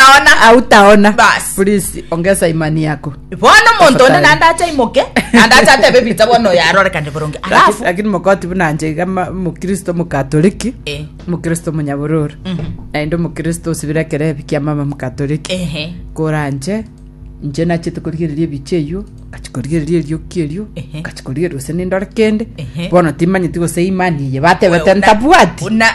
Aona. autaona Bas. please ongesa imani yako Bono omonto onde Tafadhali. naende acha aimoke, naende acha atebe Peter bono oyo arorekane boronge. Laki- Alafu, lakini mokoti buna nche iga ma- mokristo mokatoliki Eh. mokristo monyabororo Mhm. naende omokristo osibire ekero ebi kia mama mokatoliki ehe, kora nche nche nachete korigereria ebiche eyio ngachikorigereria erioki erio Ehe. ngachikorigereria gose nindore kende Ehe. bono timanyeti gose imani eye batebete Wewe una- ntabwati una-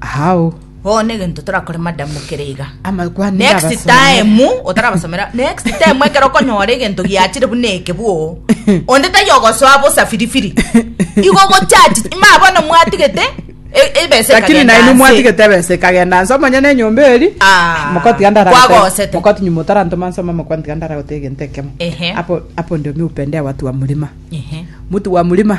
Hao. Bono negento torakore madam mokere iga. Amakwane Next abasomere. time otarabasomera next time ekero okonyora egento giachire buna eke bwo onde tari ogosoa bosa firifiri igo gochachi ma bono mwatigete e- ebesa Lakini ekagenda nainwe nse. mwatigete ebesa ekagenda nse omonyene enyomba eri Ah, mokoti gandara kwagosete. mokoti nyuma otarantoma nsoma mokoti gandara gote egento ekemo Ehe. hapo hapo ndio mi upendea watu wa mlima Ehe. mtu wa mlima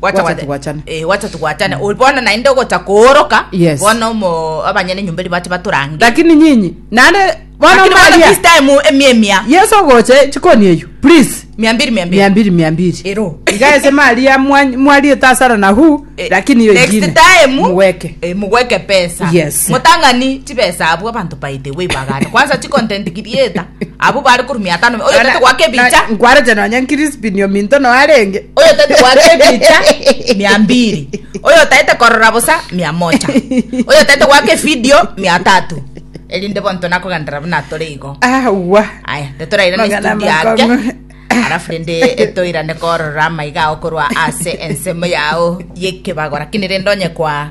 Gwacha Gwacha gwa- togwachane. Eh, gwacha togwachane Ori bono naende ogocha kooroka Yes. bono omo- abanyene nyomba eri bache batorange lakini nyinyi nande bono Lakini bono maria this time emia emia yesu ogoche chikoni eyu please mia mbiri mia mbiri mia mbiri mia mbiri ero igaese maria mwa- mwarie tasara na hu Eh, lakini iyo next ingine time muweke eh, mugweke pesa Yes. mutang'ani chibesa abwo abanto by the way bagane kwanza chicontent creator Abwo bare korumia atano oyo tete gwake bicha. Nkwarete nonya nkirispini ominto no arenge. Oyo tete gwake bicha mia mbiri. Oyo tete korora bosa mia mocha. Oyo tete gwake video mia tatu. Elinde bonto nako gandara buna tore igo. Ah, wa. Aya, tete raira ne studio yake. Arafu rende etoira ne korora maiga okorwa ase ensemo yao yekebagora. Kini rende onye kwa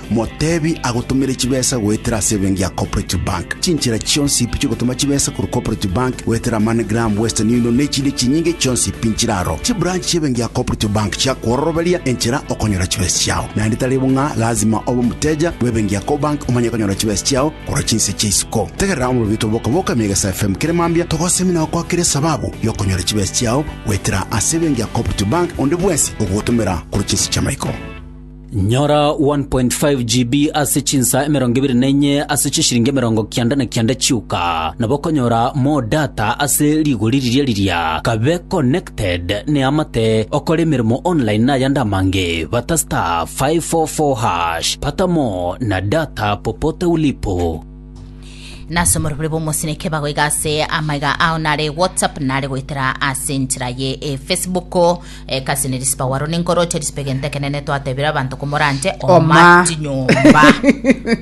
Motebi agotomere chibesa goetera ase ebenki ya Cooperative Bank. Chinchera chionsi pi chiogotoma chibesa korwa Cooperative Bank goetera MoneyGram, Western Union na echinde chinyinge chionsi pi nchire aro. Chibranch chi'ebenki ya Cooperative Bank chiakwororoberia enchera okonyora chibesa chiao. Naende tari bo ng'a lazima obe omoteja bw'ebenki ya Cobank omanye konyora chibesa chiao korwa chinse chia isiko. Tegerera omorobito bw'Oka Boka mia Egesae FM kere mambia togosemi na gokwakere esababu y'okonyora chibesa chiao goetera ase ebenki ya Cooperative Bank onde bwensi ogogotomera korwa chinse chi'amaiko. Nyora 1.5 GB ase chinsa emerongo ebere na enye ase chishiringi emerongo kianda na kianda chioka. Nabo okonyora more data ase rigori riria riria. Kabe connected ne amate okore emeremo online na ayande amange. Bata star 544 hash. Pata more na data popote ulipo. nase omorobori bw'omosini eke bagoiga ase amaiga ao nare whatsapp nare goetera ase enchera ye efacebook Ekasi nerisipa waro ninkoroche risipe gento ekenene twatebire abanto komoranche Oma. chinyomba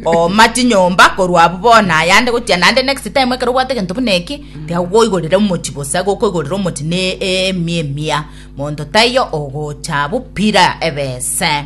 oma chinyomba korwa abu bona ayande gotia nande next time ekero obwate gento buna eki tiagokoigorere omochi bosa gokoigorere omochi ne emi emia monto taiyo ogocha abu pira ebese